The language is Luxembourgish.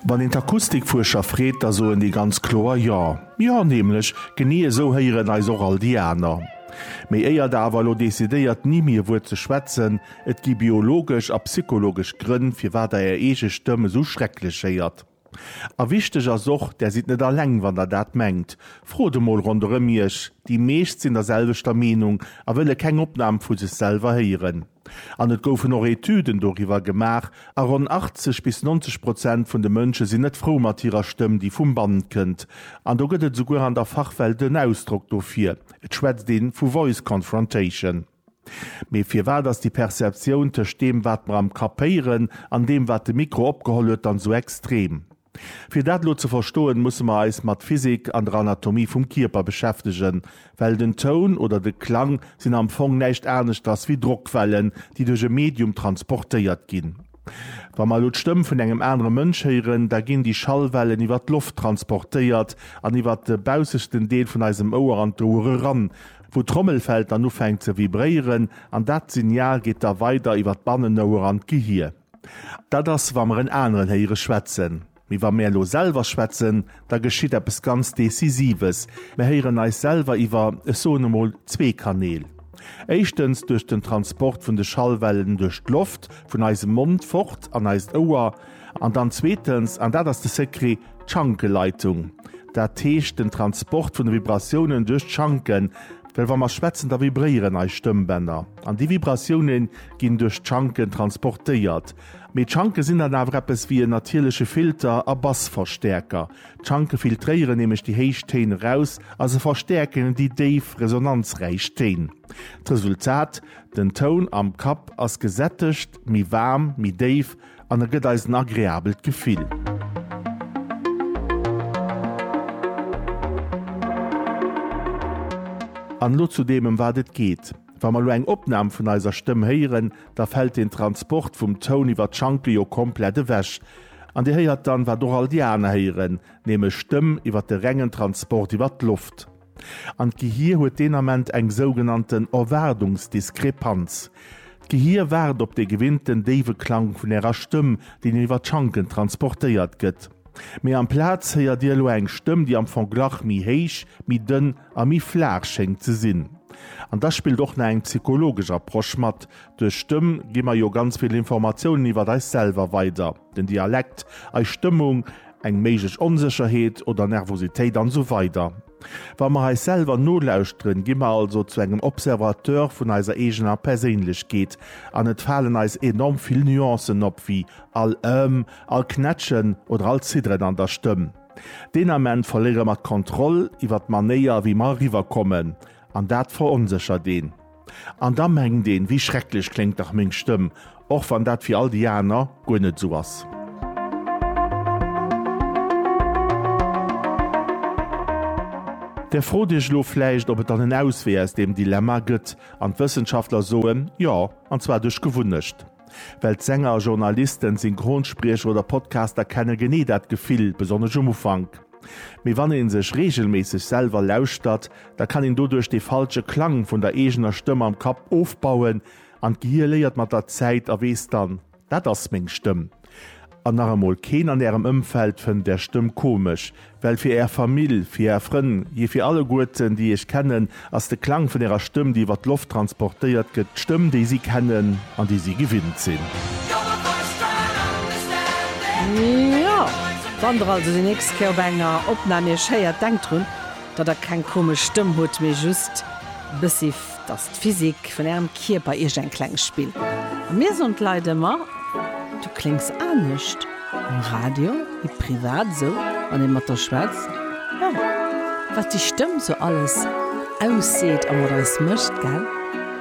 Wann een d'Akustikfuerscher freet, da soen déi ganz kloer Jo. Jo nämlech, genee esou héieren eis och all déi aner. Mee éier der awer elo decidéiert ni méi e Wuert ze schwätzen, et gi biologesch a psychologesch Grënn firwat der är eege Stëmm esou schrecklech héiert. A wichteg ass och, där sidd net alleng wann der dat mengt. Frot emol ronderëm iech, déi meescht sinn der selwechter Meenung a wëlle keng Opnam vu sech selwer héieren. An et goufen och Etüden doriwwer gemaach, a ronn 80 bis 90 Prozent vun de Mënsche sinn net frou mat hirer Stëmm, déi vum Band kënnt. An do gëtt et esouguer an der Fachwelt en Ausdrock dofir, et schwätzt ee vu Voice Confrontation. Mee firwat ass déi Perceptioun tëscht deem, wat mer am Kapp héieren, an deem, wat de Mikro opgeholl huet, dann esou extrem? Fir dat elo ze verstoen, musse mer eis mat Physik an der Anatomie vum Kierper beschäftegen, well den Toun oder de Klang sinn am Fong näischt aneschters wéi Drockwellen, déi duerch e Medium transportéiert ginn. Wa mer elo d'Stëmm vun engem anere Mënsch héieren, da ginn déi Schallwellen iwwer d'Loft transportéiert an iwwer de baussechten Deel vun eisem Ouer an d'Ouer eran, wou d'Trommelfell dann ufänkt ze vibréieren, an dat Signal geet da weider iwwer d'Bannenouer an d'Gehir. Dat ass, wa mer en aneren héiere schwätzen. Mee wa mir elo selwer schwätzen, da geschitt eppes ganz Decisives, Mir héieren eis selwer iwwer, ech soen emol, zwee Kanäl. Éischtens duerch den Transport vun de Schallwellen duerch d'Loft, vun eisem Mond fort an eist Ouer. An dann zweetens, an dat ass de Secret, d'Schankeleitung. Dat heescht den Transport vun de Vibratiounen duerch d'Schanken. Well wa mer schwätzen, da vibréieren eis Stëmmbänner. An déi Vibratiounen, ginn duerch d'Schanken transportéiert. Mee d'Schanke sinn dann awer eppes wéi en natierleche Filter a Bassverstäerker. D'Schanke filtréieren nämlech déi héich Téin eraus a se verstäerken déi déif, resonanzräich Téin. D'Resultat, Den Toun am Kapp ass gesättegt, méi waarm, méi déif an e gëtt eis en agreabelt Gefill. An elo zu deem, ëm wat et geet. Wa mer elo eng Opnam vun eiser Stëmm héieren, da fält deen Transport vum Toun iwwer d'Schanke jo komplett ewech. An Dir héiert dann, wat och all déi aner héieren, nämlech Stëmm iwwer de rengen Transport iwwer d'Loft. An d'Gehir huet deen Ament eng sougenannten Erwaardungsdiskrepanz. D'Gehir waart op dee gewinnten déiwe Klang vun Ärer Stëmm, deen iwwer d'Schanken transportéiert gëtt. Mee amplaz héiert Dir elo eng Stëmm, déi am Fong glach méi héich, méi dënn a méi flaach schéngt ze sinn. An da spillt och nach eng psychologesch Approche mat, duerch Stëmm gi mer jo ganz vill Informatiounen iwwer eis selwer weider, den Dialekt, eis Stëmmung, eng méiglech Onsécherheet oder Nervositéit an esou weider. Wa mer eis selwer nolauschteren, gi mer also zu engem Observateur vun eiser eegener Perséinlechkeet an et falen eis enorm vill Nuancen op, wéi all Ëhm, all Knätschen oder all Zidderen an der Stëmm. Deen Ament verléiere mer d'Kontroll iwwert d'Manéier, wéi mer eriwwer kommen, an dat veronséchert een. An da mengt een, Wéi schrecklech kléngt dach meng Stëmm, och wann dat fir all déi aner guer net esou ass. Där frot Iech elo vläicht, ob et dann en Auswee aus deem Dilemma gëtt, an d'Wëssenschaftler soen, Jo, an zwar duerch Gewunnecht. Well d'Sänger, Journalisten, Synchronspriecher oder Podcaster kenne genee dat Gefill, besonnesch um Ufank. Mee wann ee sech reegelméisseg selwer lauschtert, da kann een doduerch dee falsche Klang vun der eegener Stëmm am Kapp ofbauen an d'Gehir léiert mat der Zäit a weess dann, Dat ass meng Stëmm. An nach emol, keen an ärem Ëmfeld fënnt är Stëmm komesch, well fir är Famill, fir är Frënn, je fir alleguerten, déi iech kennen, ass de Klang vun ärer Stëmm, déi iwwer d'Loft transportéiert gëtt, d'Stëmm, déi si kennen an déi si gewinnt sinn. Njo, wann der also déi nächst Kéier op enger Opnam iech héiert, denkt drun, datt der keng komesch Stëmm hutt, mee just e bëssi. T'ass d'Physik vun ärem Kierper iech en klengt Spill. A mir soen d'Leit ëmmer, Du kléngs anescht am Radio wéi privat, esou wann ee mat der schwätzt, jo, wat déi Stëmm sou alles ausseet a mat eis mécht, gell?